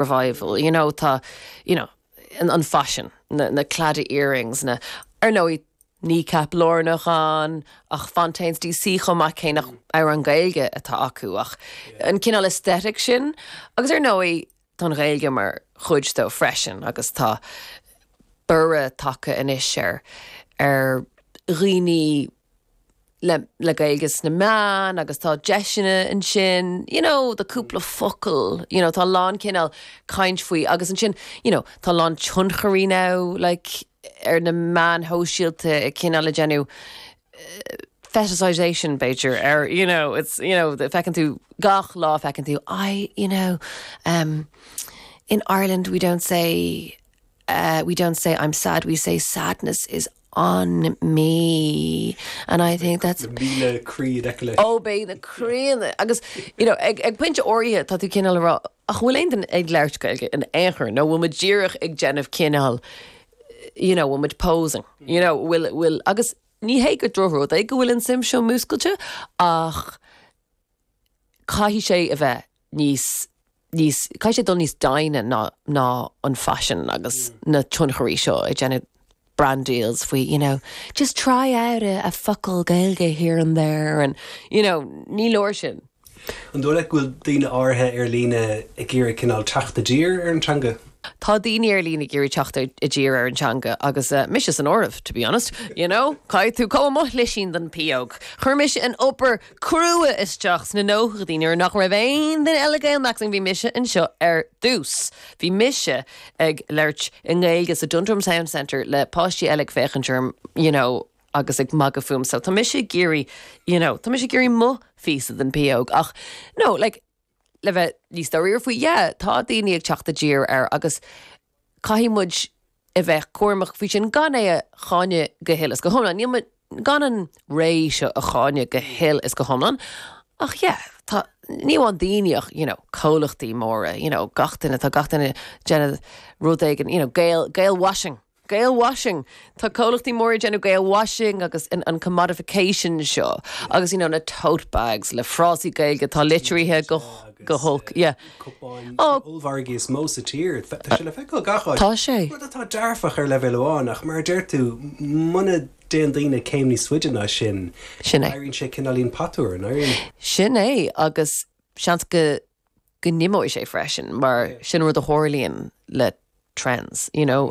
revival, you know, tá, you know, an, an faisean, na, na claddagh earrings, na, ar ndóigh, Kneecap lárnach ann, ach Fontaines DC chomh maith cé nach mm. amhráin Gaeilge atá acu, ach yeah. an cineál aesthetic sin, agus ar ndóigh tá an Ghaeilge mar chuid de freisin, agus tá borradh tagtha anois ar ar dhaoine le le Gaeilge sna meáin agus tá deiseanna ansin, you know, the cúpla focal, you know, tá a lán cineál caint faoi agus ansin, you know, tá a lán tionchairí now, like, ar na meáin shóisialta ag cineál ag déanamh fetishization, b'fhéidir, ar, you know, it's, you know, feiceann tú gach lá, feiceann tú, I, you know, um, in Ireland we don't say, uh, we don't say I'm sad, we say sadness is on me and I think that's na míle croí in aice leis. oh beidh na croíanna agus you know ag, ag pointe áirithe tá tú cineál ag rá ach an bhfuil aon duine ag labhairt Gaeilge in aon chor nó bhfuil muid díreach ag déanamh cineál you know bhfuil muid posing you know bhfuil, bhfuil agus ní hé gur drochrud é go bhfuil an suim seo múscailte ach caithfidh sé a bheith níos, níos, caithfidh sé dul níos doimhne ná, ná an faisean agus na tionchairí seo ag déanamh brand deals faoi you know, just try out a, a focal Gaeilge here and there and you know, ní leor sin. An dóigh leat go bhfuil daoine áirithe ar líne ag iarraidh cineál teacht i dtír ar an teanga? Tá daoine ar líne ag iarraidh teacht i dtír ar an teanga agus mise san áireamh, to be honest, you know, caithfidh tú gimme mo shlisín den phióg. Chuir mise an obair crua isteach sna nóchaidí nuair nach raibh aon duine eile Gaelmaxxing, bhí mise anseo ar dtús. Bhí mise ag labhairt i nGaeilge sa Dundrum Town Centre le páistí eile ag féachaint orm you know agus ag magadh fúm so tá mise ag iarraidh you know tá mise ag iarraidh mo phíosa den phióg ach no like le bheith níos dáiríre faoi yeah tá daoine ag teacht i dtír air agus caithfidh muid a bheith cúramach faoi sin gan é a cháineadh go huile is go hiomlán. Níl mé, gan an ré seo a cháineadh go huile is go hiomlán, ach yeah, tá, ní amháin daoine ach, you know, comhlachtaí móra, you know, gach duine, tá gach duine ag déanamh rud éigin, you know, Gael, Gael washing, Gael washing! Tá comhlachtaí móra ag déanamh Gael washing agus an commodification seo agus, you know, na tote bags le frásaí Gaeilge atá litrithe go holc, yeah. Cupáin sna hollmhargaí is mó sa tír, tá sé le feiceáil gach áit. Tá sé. Rud atá dearfach ar leibhéal amháin ach mar a deir tú, muna dtéann daoine céim níos faide ná sin, éiríonn sé cineáilín patuar, an éiríonn? Sin é agus seans go. go n-imeoidh sé freisin, mar sin rud a tharlaíonn le trends, you know.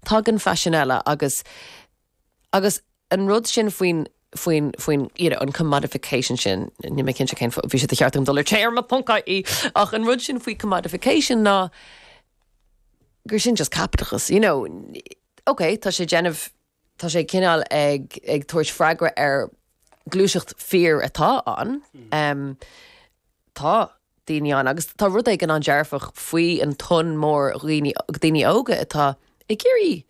Tagann faisean eile agus agus an rud sin faoin, faoin, faoin, you know, an commodification sin, níl mé cinnte cén, bhí sé de cheart agam dul ar téarma ponc ie, ach an rud sin faoi commodification ná gur sin just caipitleachas, you know. Okay, tá sé ag déanamh. Tá sé cineál ag tabhairt freagra ar ghluaiseacht fíor atá ann. Tá daoine ann agus tá rud éigin an-dearfach faoi an tonn mór dhaoine óga atá ag iarraidh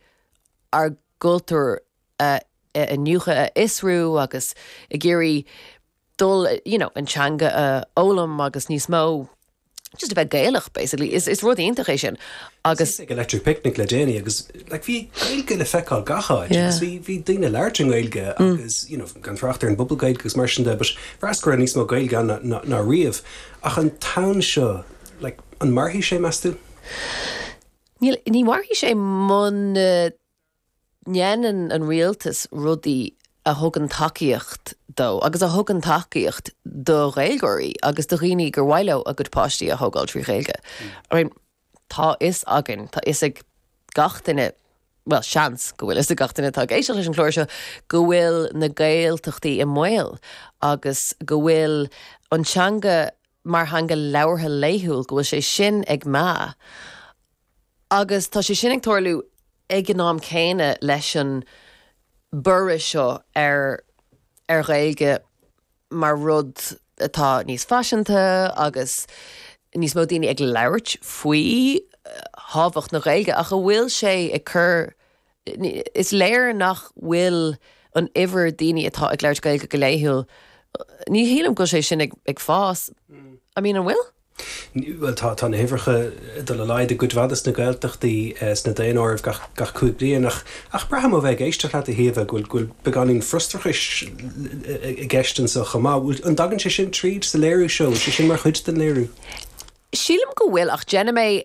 ár gcultúr a iniúchadh, a fhiosrú agus ag iarraidh dul, you know, an teanga a fhoghlaim agus níos mó just a bheith Gaelach, basically. Is, is rud iontach é sin. Agus. Bhíos ag Electric Picnic le déanaí agus, like, bhí Gaeilge le feiceáil gach áit agus bhí, bhí daoine ag labhairt i nGaeilge agus, you know, gan trácht ar an bPuball Gaeilge agus mar sin de, but feictear go raibh níos mó Gaeilge ann ná, ná, ná riamh. Ach an tonn seo, like, an mairfidh sé, meas tú? Níl, ní mhairfidh sé muna ndéanann an rialtas rudaí a thugann tacaíocht dó agus a thugann tacaíocht do Ghaeilgeoirí agus do dhaoine gur mhaith leo a gcuid páistí a thógáil trí Ghaeilge. I mean, tá fhios againn, tá fhios ag gach duine, bhuel, seans go bhfuil fhios ag gach duine atá ag éisteacht leis an chlár seo, go bhfuil na Gaeltachtaí i mbaol agus go bhfuil an teanga mar theanga labhartha laethúil, go bhfuil sé sin ag meath. Agus tá sé sin ag tarlú ag an am céanna leis an borradh seo ar ar Ghaeilge mar rud atá níos faiseanta agus níos mó daoine ag labhairt faoi thábhacht na Gaeilge ach an bhfuil sé ag cur Is léir nach bhfuil an uimhir daoine atá ag labhairt Gaeilge go laethúil, ní shílim go bhfuil sé sin ag fás, I mean, an bhfuil? Bhuel, tá na huimhreacha ag dul i laghad i gcuid mhaith de na Gaeltachtaí sna daonáirimh gach cúig bliain ach braithim ó bheith ag éisteacht leat, a Shíomha, go bhfuil beagáinín frustrachais i gceist anseo chomh maith. An dtagann sé sin tríd sa léiriú seo? An bhfuil sé sin mar chuid den léiriú? Sílim go bhfuil ach déanfaidh mé